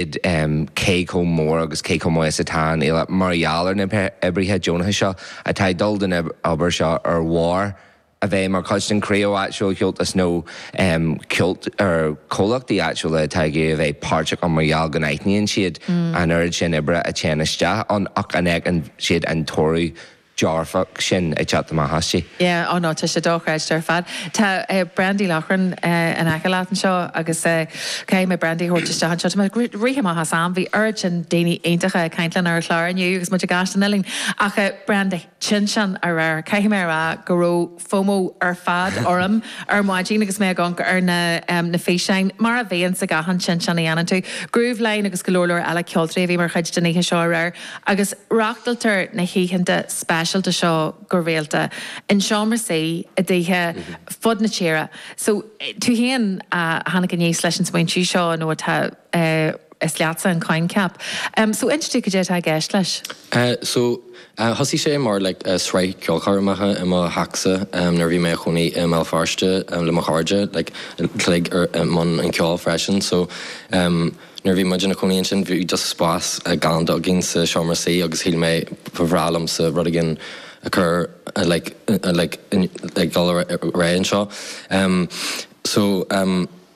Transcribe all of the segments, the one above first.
cé chomh mór agus cé chomh maith is atá an fhéile mar gheall ar na hoibrithe deonacha seo atá ag dul den obair seo ar bharr a bheith mar chuid den chriú áitiúil ceoil nó ceoil ar chomhlachtaí áitiúla atá ag iarraidh a bheith páirteach ann mar gheall go n-aithníonn siad an oiread sin oibre a théann isteach ann ach go bhfeiceann siad an toradh dearfach sin ag teacht amach as. Yeah, oh no, tá sé dochreidte ar fad. Tá Brandy Loughran in aice leat anseo agus caithfidh mé Brandy a thabhairt isteach anseo. Tá muid ag rith amach as am, bhí oiread sin daoine iontacha ag caint linn ar an chlár inniu agus muid ag Gaisce na nOileán ach Brandy, Tinteán aréir, caithfidh mé a rá go raibh, FOMO ar fad orm ar maidin agus mé ag amharc ar na na físeáin, mar a bhíonn sa gach aon Tinteán a dhéanann tú. Grooveline agus go leor leor eile ceoltóirí a bhí mar chuid den oíche seo aréir agus reachtailtear na hoícheanta speisialta seo go rialta in seomra suí i dtithe ar fud na tíre so tú féin a tháinig aníos leis an smaointiú seo nó tá is leatsa an coincheap so inis dúinn cad é atá i gceist leis? So, Thosaigh sé mar sraith ceolchoirmeacha i mo theachsa nuair a bhí mé i mo chónaí i mBéal Feirste le mo chairde a bhí i mbun an ceoil freisin so nuair a bhí muid ina chónaí ansin bhí just spás galánta againn sa seomra suí agus shíl mé ba bhreá liomsa rud éigin a chur like like ag dul ar aghaidh anseo so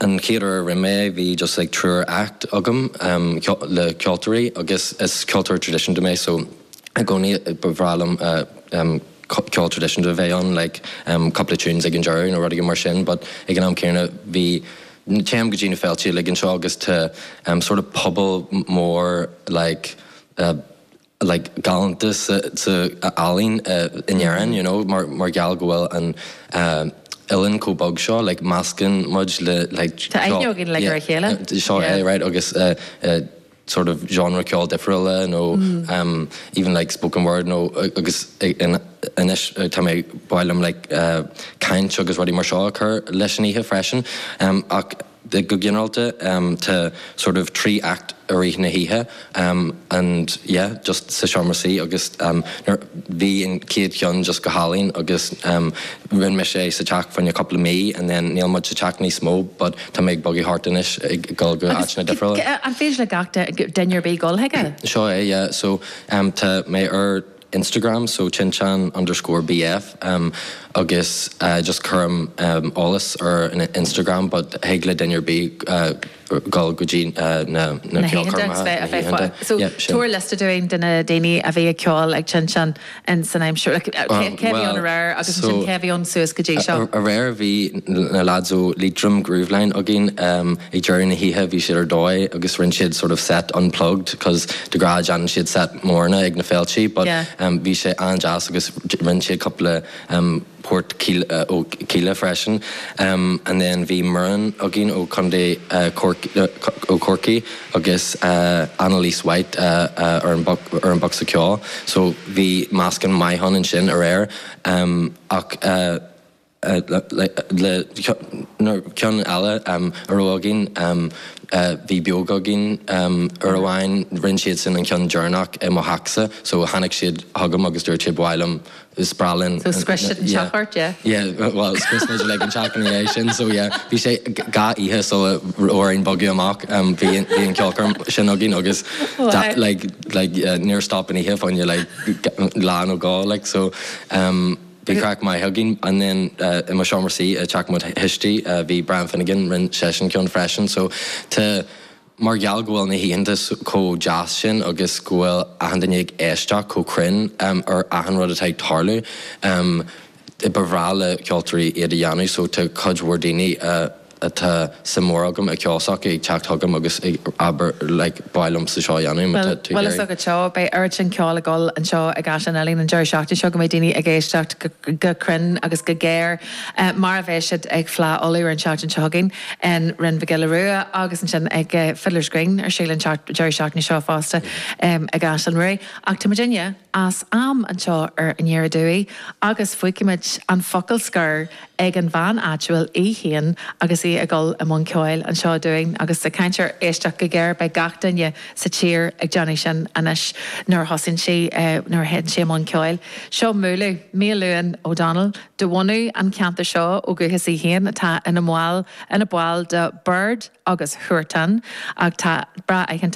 An chéad uair a rinne mé é, bhí just like triúr act agam le ceoltóirí agus is ceoltóir traidisiúnta mé so i gcónaí ba bhreá liom ceol traidisiúnta a bheith ann like cúpla tunes ag an deireadh nó rud éigin mar sin but ag an am céanna bhí, téim go dtí na féilte uilig anseo agus tá sort of pobal mór like. like galánta sa ealaín in Éirinn you know mar gheall go bhfuil an oileán chomh beag seo like meascann muid le like Tá aithne againn ar a chéile. yeah seo é right agus sort of genre ceoil difriúla nó even like spoken word nó agus anois tá mé, b'áil liom like caint agus rudaí mar seo a chur leis an oíche freisin ach Go ginearálta, tá sórt of trí act i rith na hoíche and yeah just sa seomra suí agus nuair, bhí an chéad cheann just go hálainn agus rinne mé é sa teach faoi cheann cúpla mí and then níl muid sa teach níos mó but tá mé ag bogadh thart anois ag dul go áiteanna difriúla. Agus an féidir le duine ar bith dul chuige? Seo é yeah so tá mé ar Instagram, so tinteán underscore bf, em, agus, eh, just cuirim, em, eolas ar an Instagram but thig le duine ar bith, eh, dul go dtí, eh, na, na ceolchoirmeacha, na hoícheanta, yeah, sin. Tabhair liosta dúinn de na daoine a bhí ag ceol ag tinteán in san aimsir, like, eh, cé, cé a bhí ann aréir agus ansin cé a bhí ann suas go dtí seo? Bhuel, so, aréir bhí na lads ó Liatroim, Grooveline againn, em, ag deireadh na hoíche bhí siad ar dóigh agus rinne siad sort of set unplugged 'cause, de ghnáth déanann siad seit mhóra ag na féiltí but bhí sé an-deas agus rinne siad cúpla port ó Kíla freisin and then bhí Muireann againn ó Chontae ó Chorcaigh agus Annalise White ar an bocsa ceoil so bhí meascán maith ann ansin aréir ach le ceann eile a raibh againn bhí Beoga againn uair amháin rinne siadsan an ceann deireanach i mo theachsa so tháinig siad chugam agus dúirt siad bhuel um is breá linn So scrios siad an teach ort yeah? yeah bhuel scrios muid like an teach ina dhiaidh sin so yeah bhí sé dhá oíche sula raibh orainn bogadh amach um bhí an bhí an ceolchoirm sin againn agus Wow. like like yeah níor stop an oíche fá choinne like lá nó dhó like so um Bhí craic maith againn and then i mo seomra suí i teach mo thuistí bhí Brian Finnegan, rinne seisean ceann freisin so tá, mar gheall go bhfuil na hoícheanta chomh deas sin agus go bhfuil achan duine ag éisteacht chomh cruinn ar achan rud atá ag tarlú, ba bhreá le ceoltóirí iad a dhéanamh so tá cuid mhór daoine a. atá suim mór agam i ceol s'acu ag teacht chugam agus ag, abair, like, ba mhaith liomsa seo a dhéanamh, má tá tú ag iarraidh. Bhfuil a fhios agat seo, beidh oiread sin ceoil ag dul anseo ag Caisleán Uidhilín an deireadh seachtaine seo go mbeidh daoine ag éisteacht go cruinn agus go géar mar a bheidh siad ag Fleá Uladh ar an tseachtain seo chugainn in Rinn Mhic Giolla Rua agus ansin ag Fiddler's Green ar siúl an deireadh seachtaine seo fosta ag Caisleán Ruairí. Ach tá muidinne. as am anseo ar an aer inniu agus fuígfimid an focal scoir ag an bhean áitiúil í féin agus í ag dul i mbun ceoil anseo dúinn agus ag caint ar éisteacht go géar. Beidh gach duine sa tír ag déanamh sin anois nuair a thosaíonn sí, nuair a théann sí i mbun ceoil. Seo Múlú, Miadhachlughain O'Donnell, de bhunadh an cheantair seo ó dhúchas í féin, atá ina mball, ina ball de Biird agus Huartan atá breá aitheanta,